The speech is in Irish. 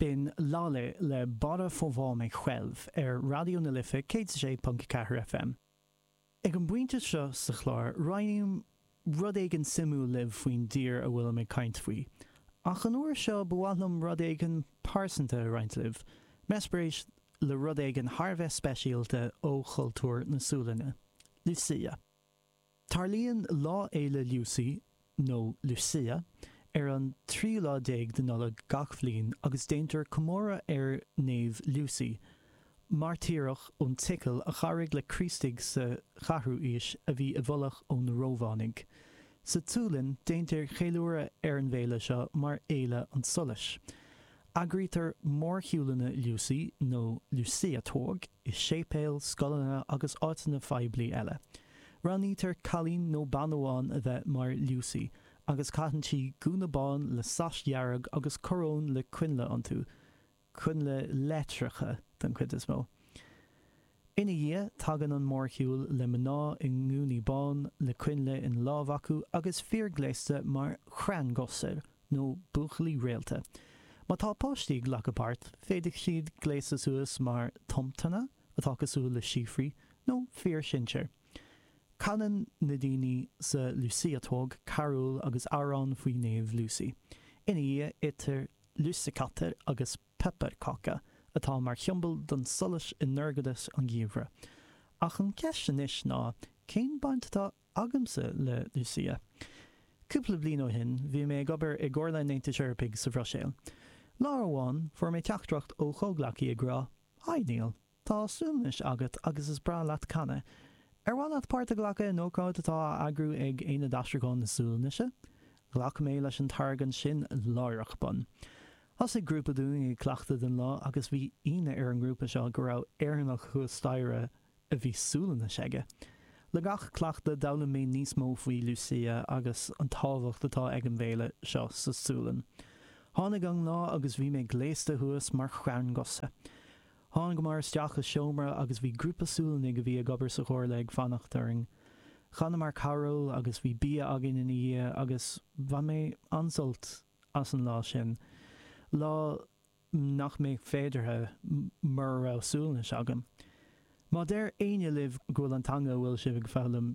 B'in Laleh le Bara få va mig själv ar Raidió na Life 106.4 FM. Ag an bpointe seo sa chlár roinnim rud éigin suimiúil libh faoin dtír a bhfuilim ag caint faoi, ach an uair seo ba mhaith liom rud éigin pearsanta a roinnt libh, m'eispéireas le rud éigin thar a bheith speisialta ó chultúr na Sualainne, Lucia. Tarlaíonn Lá Fhéile Lucy, nó Lucia, ar an tríú lá déag de Nollaig gach bhliain agus déantar comóradh ar Naomh Lucy, mairtíreach ón tSicil a chabhraigh le Críostaigh sa cheathrú aois a bhí i bhfolach ó na Rómhánaigh. Sa tSualainn, déantar ceiliúradh ar an bhféile seo mar Fhéile an tSolais. Eagraítear mórshiúlanna Lucy nó Luciatåg i séipéil, scoileanna agus áiteanna phoiblí eile. Roghnaítear cailín nó bean amháin a bheith mar Lucy agus caitheann sí gúna bán le sais dhearg agus coróin le coinnle iontu, coinnle leictreacha den chuid is mó. Ina dhiaidh, tagann an mórshiúl le mná i ngúnaí bán, le coinnle ina lámh acu agus fir gléasta mar stjärngossar, nó Buachaillí Réalta. Má tá páistí ag glacadh páirt, féadfaidh siad gléasadh suas mar Tomtanna, atá cosúil le síofraí, nó Fir Shinséir. Canann na daoine sa Luciatåg carúil agus amhrán faoi Naomh Lucy. Ina dhiaidh, itear Lussekatter agus. Pepparkaka, atá mar shiombail don tsolais i ndorchadas an gheimhridh. Ach an cheist anois ná, cén baint atá agamsa le Lucia? Cúpla bliain ó shin, bhí mé ag obair i gComhairle an Aontais Eorpaigh sa Bhruiséil. Lá amháin, fuair mé teachtaireacht ó chomhghleacaí ag rá, 'Haigh, Niall. Tá Sualainnis agat agus is breá leat canadh. Ar mhaith leat páirt a ghlacadh in ócáid atá á eagrú ag Aonad Aistriúcháin na Sualainnise? Ghlac mé leis an táirge ansin láithreach bonn. Thosaigh grúpa dúinn ag cleachtadh don lá agus bhí ionadh ar an ngrúpa seo go raibh Éireannach thuas staighre a bhí Sualainnis aige. Le gach cleachtadh d'fhoghlaim mé níos mó faoi Lucia agus an tábhacht atá ag an bhféile seo sa tSualainn. Tháinig an lá agus bhí mé gléasta thuas mar stjärngosse. Thángamar isteach i seomra agus bhí grúpa Sualannaigh a bhí ag obair sa Chomhairle ag fanacht orainn. Chanamar carúil agus bhí bia againn ina dhiaidh agus bhain mé an-sult as an lá sin, lá nach mbeadh féideartha mura raibh Sualainnis agam. Má deir éinne libh go bhfuil an teanga a bhfuil sibh ag foghlaim